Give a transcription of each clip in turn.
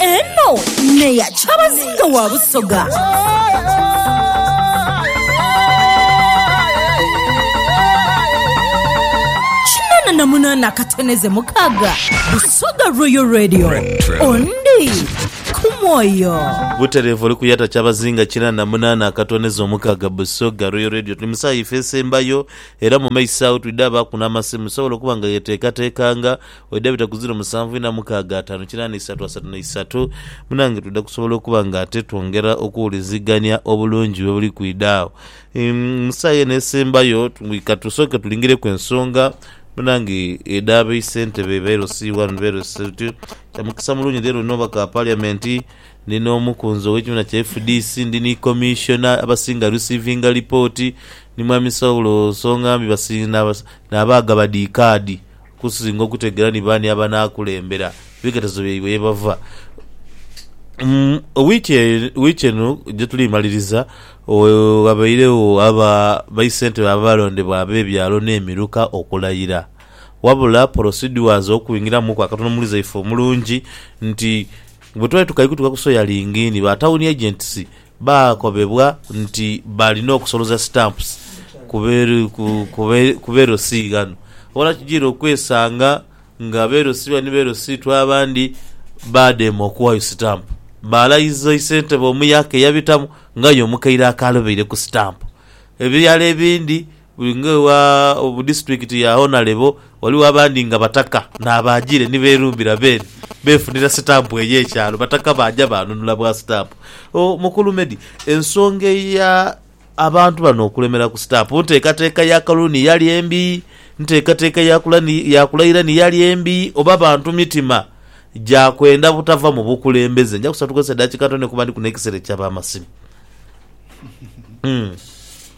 Eno neya kyabazinga wa Busoga. Kinana na munana akateneze mukaga. Busoga Royal Radio. Ondi kumwoyo. butereevu oli kuyata kyabazinga kina na munaana akatoneza omukaaga busoga royal radio tuli mu saawa ife esembayo era mu maiso awo twidde abaaku n'amasimu sobola okuba nga yeteekateekanga Oida bita ku ziro musanvu ina mukaaga ataanu kinaana isatu asatu na isatu, munange twidha kusobola okuba nga ate twongera okuwulizigania obulungi bwe buli kwidha agho. Mu saagha eno esembayo ka tusooke tulingireku ensonga munange edha ba isentebe ba LC I ni ba LC ii. Kya mukisa mulungi leero ndina omubaka wa Paliamenti, ndi n'omukunzi ow'ekibiina kya fdc, ndi ni Commissioner abasinga receiving lipooti, ni Mwami Saulo Nsongambi nabaagha ba dhi kaadi. Kusinga okutegeera ni baani abanaakulembera ebighetezo byaibwe ye bava. Mu wiiki eno gye tuli maliriza, ghabairegho aba baisentebe abaalondebwa ab'ebyalo n'emiruka okulayira. Wabula porosidua z'okwingiramuku akatono muli zaife omulungi nti bwe twali tukali kutuuka ku Soya Lingiini, ba tawuni agents Baakobebwa nti baalina okusoloza stamps ku be LC ghano. Wala kijiire okwesanga nga be LC bano ni be LC tu abandi baadema okuwayo stamp. Baalayiza isentebe omu yaaka eyabitamu nga aye omukaire akaalobeireku stamp. Ebirala ebindi Buli ng'ewa mu disiturikiti ya Honalebo, ghaligho abandi nga Bataka n'abaajiire ni beerumbira beene beefunira sitampu eyo ekyalo. Bataka baaja baanunula bwa sitampu. O, Mukulu Medi, ensonga eya abantu bano okulemera ku sitampu, nteekateeka ya Kaluni yali embi, nteekateeka ya Kulani, ya Kulairani yali embi, oba bantu mitima gya kwenda butava mu bukulembeze? Nja kusaba tukozese edakika ntone kuba ndi ku n'ekisera eky'ab'amasimu. Umm.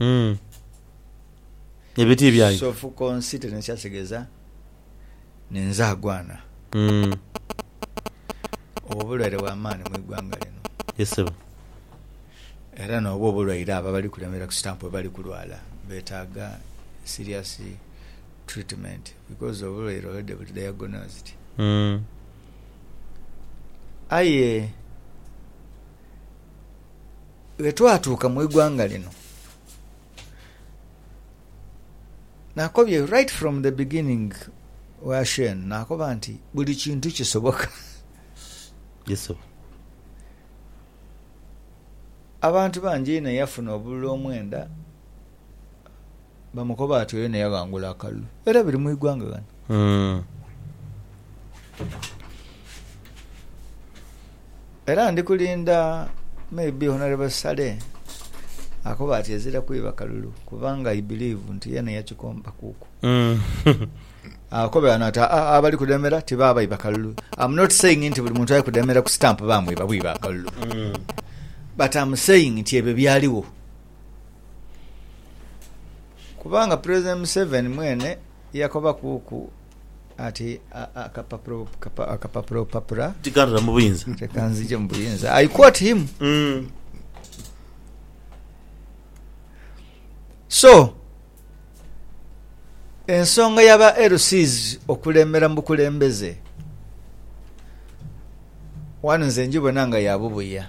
Umm ebiti byayo. Sofukonsite ne kyategeza nenzagwana. Umm. Obwo bulwaire bwa maani mu igwanga lino. Ye sebo. Era nobwo obulwaire abo abali kulemera ku stamp bwebali kulwala betaga serious treatment because obulwaire already buli diagnosed. Umm. Aye. Bwe twatuuka mu igwanga lino, nakobye right from the beginning wa Shane nakoba nti buli kintu kisoboka. Yes oba. Abantu bangi inho eyafuna obululu omwenda bamukoba ati oyo neyaghangula akalulu era biri mu igwanga ghano. Era ndi kulinda maybe Honourable Saleh akoba ati ezira kwiba kalulu kubanga I believe nti yena yakikombakuku. Akobe ghano ati aa abali kudemera tibaba baiba kalulu. Am not saying nti buli muntu ali kudemera ku stamp bamwiba bwiba akalulu but am saying nti ebyo byaligho. Kubanga Pulezidenti Museveni mwene yakobakuuku ati akapapulabupapula tikanzije mu buyinza. I quote him. So, ensonga ya ba LCs okulembera mu bukulembeze wano nze njibona nga ya bubuya.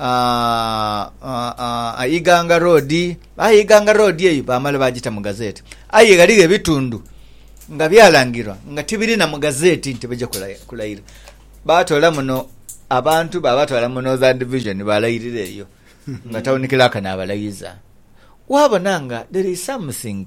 aa, Iganga Road. Aye Iganga Road eyo baamala baagita mu gazeeti. Aye ghaligho ebitundu nga byalangirwa nga tibirina mu gazeeti nti baja kulayira. Baatoola muno abantu baabatwala mu Northern Division baalayirira eyo nga tawuni kilaaka naabalayiza. Waabona nga there is something.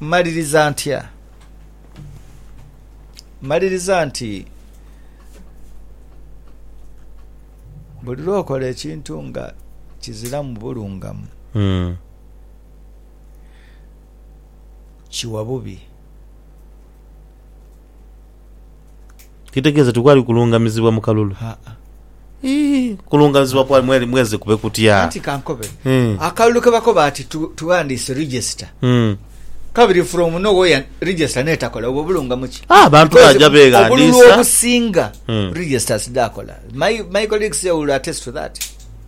Mmaliriza ntya? Mmaliriza nti buli lw'okola ekintu nga kiziramu bulungamu, kiwa bubi. Kitegeeza tikwali kulungamizibwa mu kalulu? Haa. Ii, kulungamizibwa kwali mwali mweze kube kutya? Anti ka nkobe. Hee. Akalulu ke bakoba ati tu, tughandiise register, Mm. kabiri from no where register n'etakola, obwo bulungamo ki? Ah, abantu Because baja obululu beeghandiisa. obusinga Mm. registers dhaakola. My, my colleagues here will attest to that.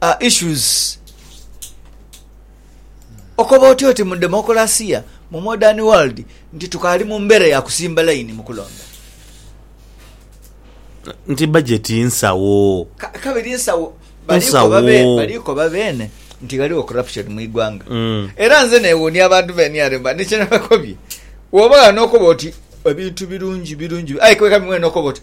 are issues okoba otya oti mu demokulasiya mu modern world nti tukaali mu mbeera ya kusimba layini mu kulonda nti bajeti nsawo Ka- kabiri nsawo baliko Nsawo. babe- baliko babeene nti ghaligho corruption mu igwanga Mm. era nze newuunia abantu be nrm nikyenabakobye woba ghano okoba oti ebintu birungi birungi aye kwekabi mwene okoba oti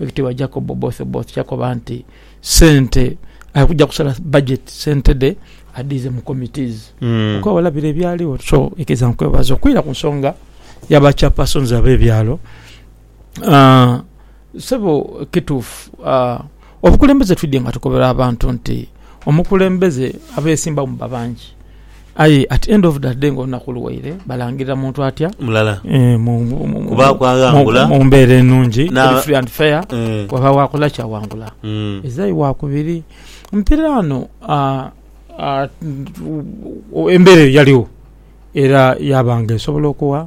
Owekitibwa Jacob Oboth Oboth yakoba nti sente ali kuja kusala budget sente dhe adhiize mu committees okwewala bire ebyaligho so ekiriza nkwebaza okwira ku nsonga ya ba chairpersons abe byalo sebo kituufu obukulembeze twidhye nga tukobera abantu nti omukulembeze abesimbawo muba bangi. Aye at end of the day nga olunaku luwaire balangirira muntu atya mulala eh, mu- mu- mu- Kubaaku mu- aghangula. mu mbeera enungi Na- eri free and fair Eh, wabagho akola ki awangula mm, ezai wakubiri mpira ano ah, ah, mm, embera eyo yaligho era yabanga esobola okuwa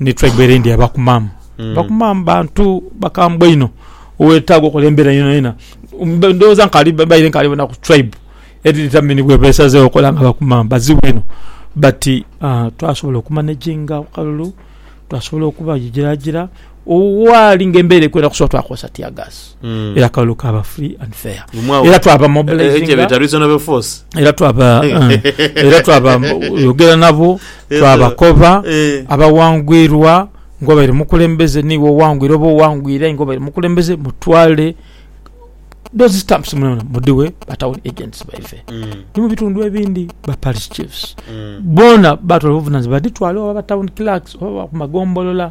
Ni tribe ere ndi ya Bakumam. Mm. Bakumam bantu bakambwe inho owetaaga okola embera yonayona. Ndowooza nkali baire nkali bona ku tribe eri determine bwe besazeewo okola nga Bakumam bazibu inho but uh, twasobola okumanaginga akalulu twasobola okubajiragira owaali nga embera ekwenda kusobola twakozesa tear gas. mm. era akalulu kaba free and fair era twaba mobilizing eh, eh, era twaba eh, era twaba yogera nabo twabakoba abawangwirwa ngobaire mukulembeze niwe owangwire oba owangwire ngobaire mukulembeze mutwale those stamps mwana mudiwe batown agents baife mm. ni mu bitundu ebindi ba parish chiefs mm. bona batwala obuvunanyizibwa baditwale oba batown clerks oba ku magombolola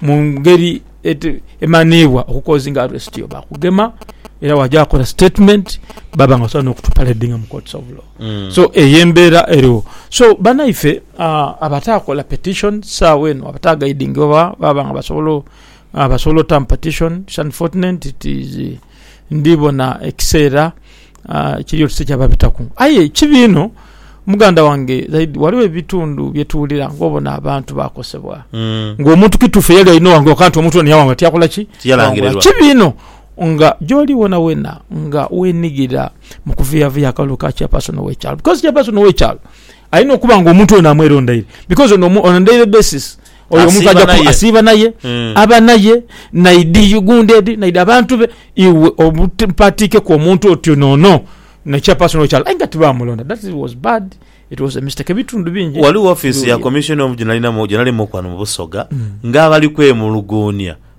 mu ngeri emanhiibwa okukozinga aresiti yo baakugema era waja wakola sitetimenti baba nga basobola n'okutupaledinga mu courts of law so eyo embeera eriwo so banaife abataakola petishoni saagha eno abataagaidingibwa baaba nga basobola otamu petishoni it's unfortunate it is ndi bona ekiseera kiri oti tikyaba bitaku. Aye kibi inho muganda wange, zaidi ghaligho ebitundu bye tuwulira ng'obona abantu baakosebwa, ng'omuntu kituufu eyali aina owanguka nti omuntu ono yawangula tiyakola ki? Tiyalangirirwa. Kibi inho nga gy'oli wonawona nga weenigira mu kuvuyavuya akalulu ka chairperson w'ekyalo. Bikozi chairperson w'ekyalo Alina okuba nga omuntu ono amwerondaire because ono on a daily basis oyo omuntu aja ku asiiba naye mm. aba naye naidi gundi edi naidi abantu be iwe obutipatiikeku omuntu otyo nono nekya personal kyalo aye nga tibamulonda that was bad it was a mistake ebitundu bingi waliwo office ya commission omuju nalinamu gyenalimu kwano mu busoga mm. nga abali kwemuluguunia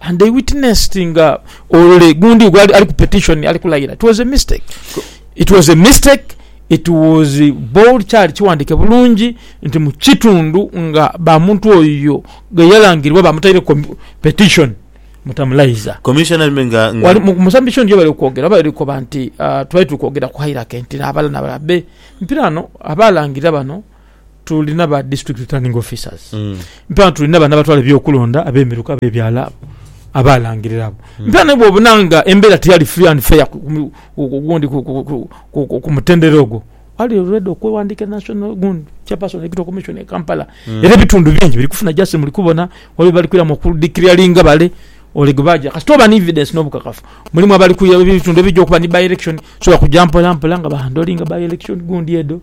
and they witnessed nga ole gundi gwe ali ku petition ali kulayira it was a mistake it was a mistake it was bold kyali kiwandike bulungi nti mu kitundu nga ba muntu oyo gwe yalangirwa bamutaire ku petition mutamulayiza Commissioner me nga, nga wali mu- musambisho ndiyo bali okwogera bali okoba nti ah, twali tuli kwogera ku hairake nti nabala nabala be mpira ano abalangirira bano tuli naba district returning officers mm. mpera tuli naba nabatwala ebyokulonda abemiruka bebyalo abo abalangirira abo mm. mpera nabwe obunanga embera tiyali free and fair gundi ku mutendera ogwo ali ready okwewandika national gundi chairperson ekito commission e Kampala mm. era ebitundu bingi biri kufuna just muli kubona wali bali kwira mu ku declaringa bale olegebaja kasita oba ni evidence n'obukakafu mulimu abali kuya ebitundu ebijja okuba ni by election so bakujja mpola mpola nga bahandolinga by election gundi edo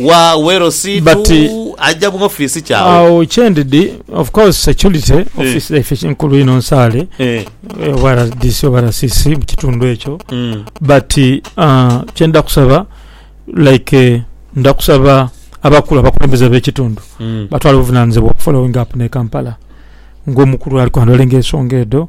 Wa wero si tu But- aja mu office kyawo. Agho kyendidi of course security office dhaife ki- nkulu inho nsaale Eh. eh, oba RDC oba RCC mu kitundu ekyo Mm. but uh, kyenda kusaba like eh, nda kusaba abakulu abakulembeze b'ekitundu Mm. batwala obuvunanizibwa okufollowing up ne Kampala ng'omukulu ali kwandolinga ensonga edo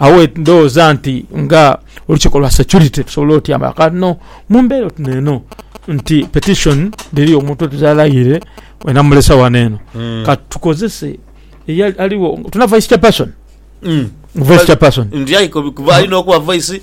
Agho we ndhoghoza nti nga olukiiko lwa security tusobola otya nga kati no mu mbeera oti neeno nti petition dhiriyo omuntu oti talaire we namulesa ghano eno Mm. kati tukozese eyali aligho tuna vice chairperson Mm. vice chairperson Ndi aye kuba alina okuba voice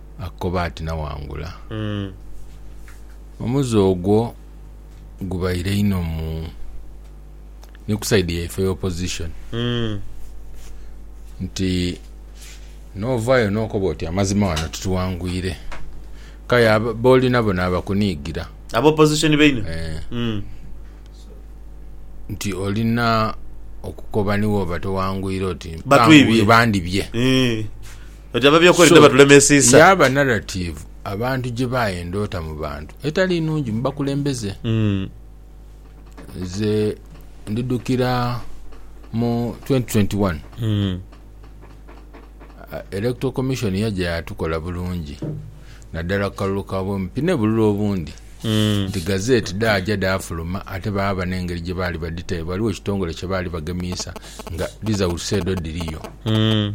akoba ati nawangula. Omuze ogwo gubaire inho mu ni ku side yaife eya opposition nti novayo nokoba oti amazima wano tituwangwire kaya boli nabo nabakunigira Aba opposition bainho? nti olina okukoba niwoba towangwire oti Batwibye. bandibye. Eeh. Oti ababi okweli So, tebaturemesiisa. Yaaba narrative abantu gye baayenda ota mu bantu etali nnungi mu bakulembeze. Mm. Nze ndidhukira mu 2021 Mm. Electoral Commission yaja yatukola bulungi naddala ku kalulu ka bwemupi ne bululu obundi Mm. nti gazeti dhaaja dhaafuluma ate baaba n'engeri gye baali badhita, ghaligho ekitongole kye baali bagemiisa nga dhizawusa edho dhiriyo. Mm.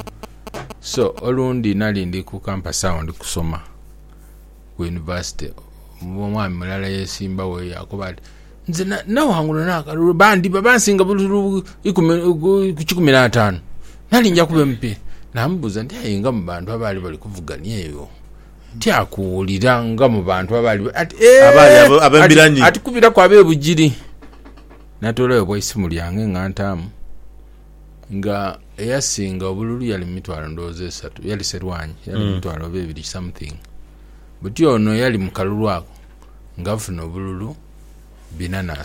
So olundi nali ndi ku kampasi agho ndi kusoma ku yunivasite, omwami mulala yeesimbagho yaakoba ati, Nze naghangula n'akalulu bandhiba bansinga bululu ikumi ku kikumi n'ataanu, nali nja kuba MP. Naamubuuza nti, Aye nga mu bantu abaali bali kuvugania eyo tyakuwulira nga mu bantu abaali. Ati, Ati kubiraku ab'e Bugiri. Natoolayo bwa isimu lyange nga ntaamu nga eyasinga obululu yali mumitwalo ndowooza esatu yali serwanyi yali mumitwalo oba ebiri something buti ono yali mukalulu ako nga afuna obululu bina na